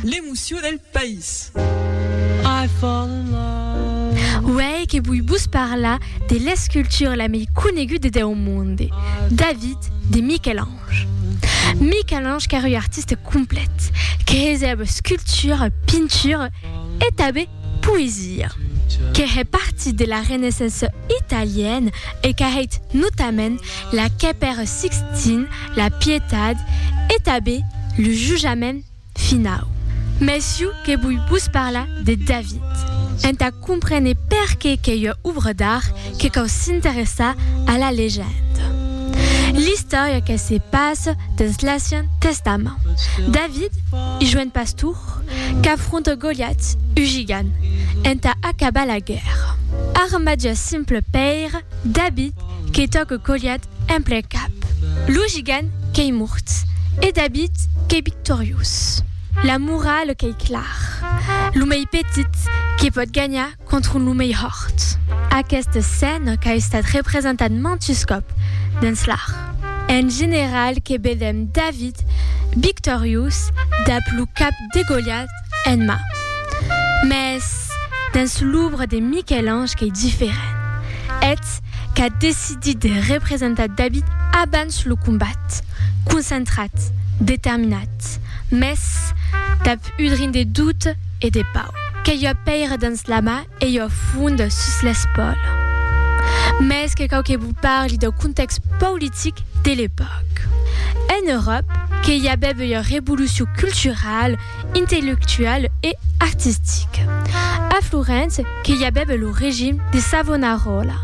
L'emoció del país. Uèi que voi vos parlar de l'escultura la mei coneguda deu monde, David de Michel-Ange. Michel-Ange qu'ère ua artista complet, que hesèva escultura, pintura e tanben poesia. Qu'ère partit de la Renaissance italiana e qu'a hèit notament la quai per Sixtin, la pietat e tabé lo jujament finau. Messiu que voi vos parlar de David. Entà comprene perqué qu'ei ua obra d'art que cau s'interessar a la legenda. L'istòria que se passa dens l'Acian Testament. David, ua joen pastor, qu'afronta Goliat, ua gigant, entà acabar la guèrra. Armat d'ua simple pèira, David, que tòc e colhat en plen cap, lo gigant qu'ei mort e David qu'ei victoriós. La morale qu'ei clar, lo mei petit que pòt ganhar contra lo mei hòrt. Aqueste scène qu'a estat representat mantes còp dens l'art. En general que vedèm David victoriós dab lo cap Degolhat en ma. Mès dens l'òbra de Miquel-Ange qu'ei diferent. Eth qu'a decidit de representar David abans lo combat, concentrat, determinat, mès dab udrin de doute e de pau, qu'ei ua pèira dens la ma e jo fond sus l'espòla. Mès que cau que vos parli dau contèxt politic de l'epòca. En Euròp que i avève ua revolucion cultural, intellectual e artistica. A Florence que i avève lo regim de Savonarola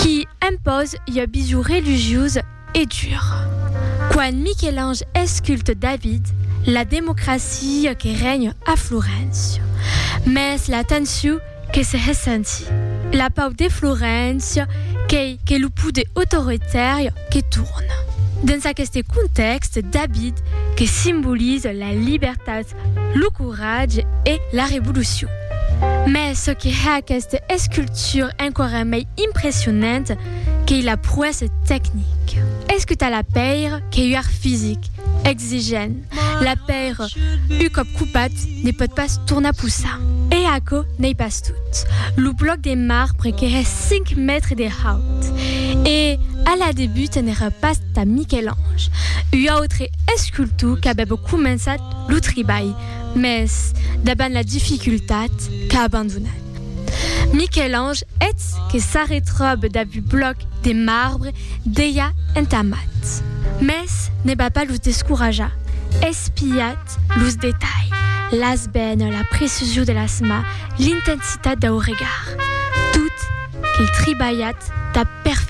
qui impòse ua vision religiosa E dur. Quan Miquel-Ange esculte David, la democracia que règne a Floréncia. Mès la tensiu que se ressentie. La pau de Floréncia qu'ei que lo poder autoritari que torne. Dens aqueste contèxte, David, que simbolize la libertat lo coratge e la revolucion. Mes çò que hè aquesta escultura enqüara mei impressionanta qu'ei la proèssa tecnica. Es que tà la pèira qu'ei uèr fisic, exigent, la pèira, un còp copat, ne pòt pas tornar possar. E aquò n'ei pas. Tot lo blòc de marbre qu'èra 5 mètres de haut. E a la debuta n'èra pas tà Miquel-Ange, ua autre escultor qu'avèba començat lo tribalh, mès davant la dificultat qu'a abandonat. Miquel-Ange eth que s'arretròbe dab un blòc de marbre dejà entamat. Mès ne va pas los descorajar, espiat Los detalhs, las bènes, la precision de las mas, l'intensitat dau regard. Tot qu'ei tribalhat tà perfeccion.